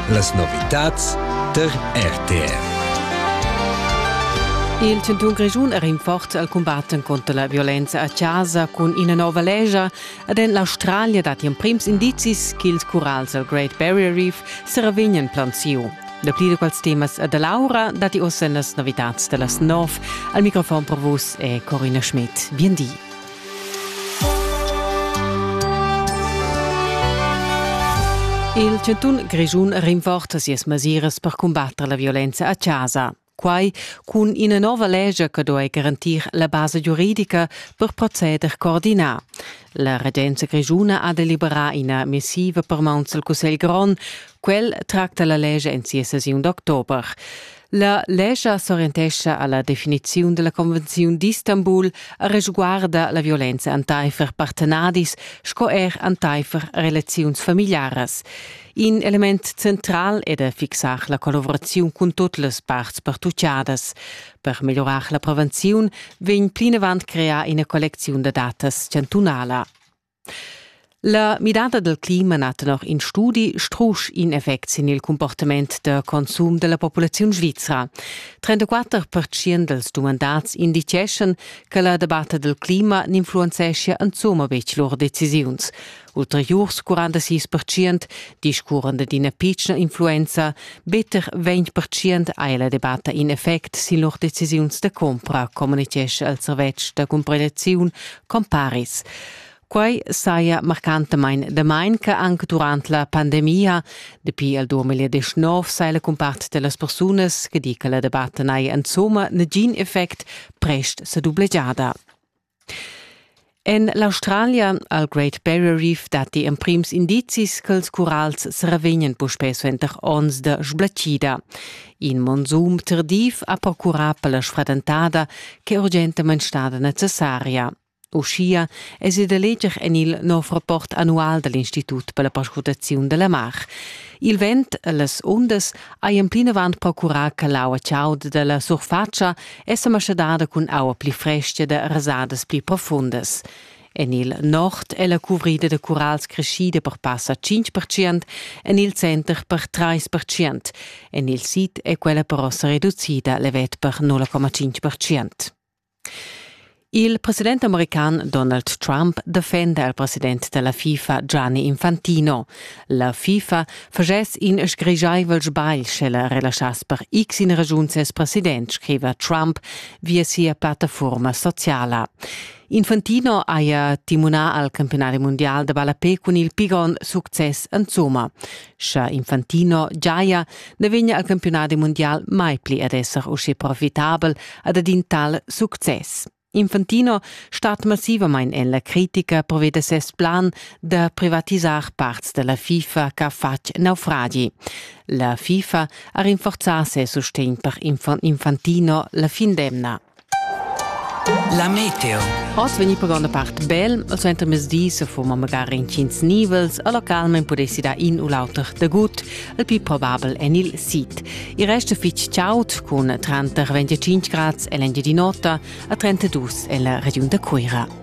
Las novitads der RTR. Il Tintun Grischun è rinfort al combatten contro la violenza a casa cun ina nova legia ed en l'Australia datti emprims indizis ch'ils curals al Great Barrier Reef se ravegnan planziu. Da pli da quels temas e da Laura datti ossa las novitads da las nov. Al microfon per vus è Corina Schmidt. Bien di. Il chantun Grischun rinforza sias mesiras per cumbatter la violenza a chasa. Quai cun ina nova lescha che duai garantir la basa giuridica per proceder coordinà. La regenza grischuna ha deliberà ina missiva per mauns al Cussegl grond. Quel tracta la lescha en sia sessiun d'october. La lescha s'orientescha alla definiziun della Convenziun d'Istanbul a resguarda la violenza enteifer partenadis sco er enteifer relaziuns familiaras. In element central è da fixar la collaboraziun cun tutte le parts partucciadas. Per migliorare la prevenzione vegn plinavant creata una collezione da datas chantunala. La midada dal clima na tenor in studi strusch in effect sin il cumportament da consum da la populaziun svizra. 34% dals dumandats indiceschan che la debatta dal clima n'influenzeschia insumma betg lur decisiuns. Ulteriurs 46% discurran da d'ina pitschna influenza, better 20% ha la debatta in effect sin lur decisiuns da compra, communitgescha il servetsch da cumprelaziun comparis. Quai saja marcantamain damain che anc durant la pandemia, dapi il 2019, sai la cumpart da las persunas che di che la debatta n'haja insomma nagin effect prest sa dublegiada. En l'Australia, al Great Barrier Reef, datti emprims indizis ch'ils curals sa ravegnan puspè suenter onns da sblatschida. In monzum tardiv ha procurà per la sfradentada ch'è urgentamain stada necessaria. Uschia èsi da leger en il nov rapport annual da l'Institut per la perscrutaziun da la mar. Il vent e las undas hajan plinavant procurà che l'aua chauda da la surfatscha è sa maschadada cun aua pli frestga da rasadas pli profundas. En il nord è la cuvrida da curals creschida per passa 5 en il center per 3 En il sid è quella però sa reducida levet per 0,5 Il president american Donald Trump defenda il president della FIFA Gianni Infantino. La FIFA facess in sgrigiaivel sbagl sche la relaschass per x in ragiun ses president, scriva Trump via sia plattaforma sociala. Infantino haja timunà al campiunari mundial da ballapé cun il pi grond success insomma. Scha Infantino giaja, na vegna al campiunadi mundial mai pli ad esser usché profitabel ad ad in tal success. Infantino stat massivamain en la critica provè da ses plan da privatisar parts da la FIFA ch'ha fatg naufragi. La FIFA ha rinforzà ses sustegn per Infantino la fin d'emna. La meteo. Oz vegni per gronda part bel, e suenter mesdi se foma magari intgins nivels, a localment pudessi dar in u l'auter dagut, il più probabel en il sid. Il resto fitg chaud, con 30-25 grad en l'Engiadin'Ota e 32 en la regiun da Cuira.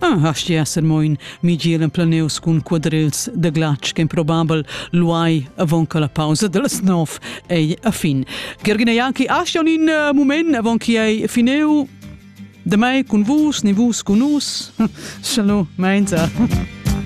Ah, asti esser moin, mi giel en planeus cun quadrils de glatsch qu'improbabel luai avon che la pausa dels nov ei a fin. Gergina Janki, asti on in uh, moment avon che ei fineu de mai cun vus, ni vus cun us. Shalom, meinza.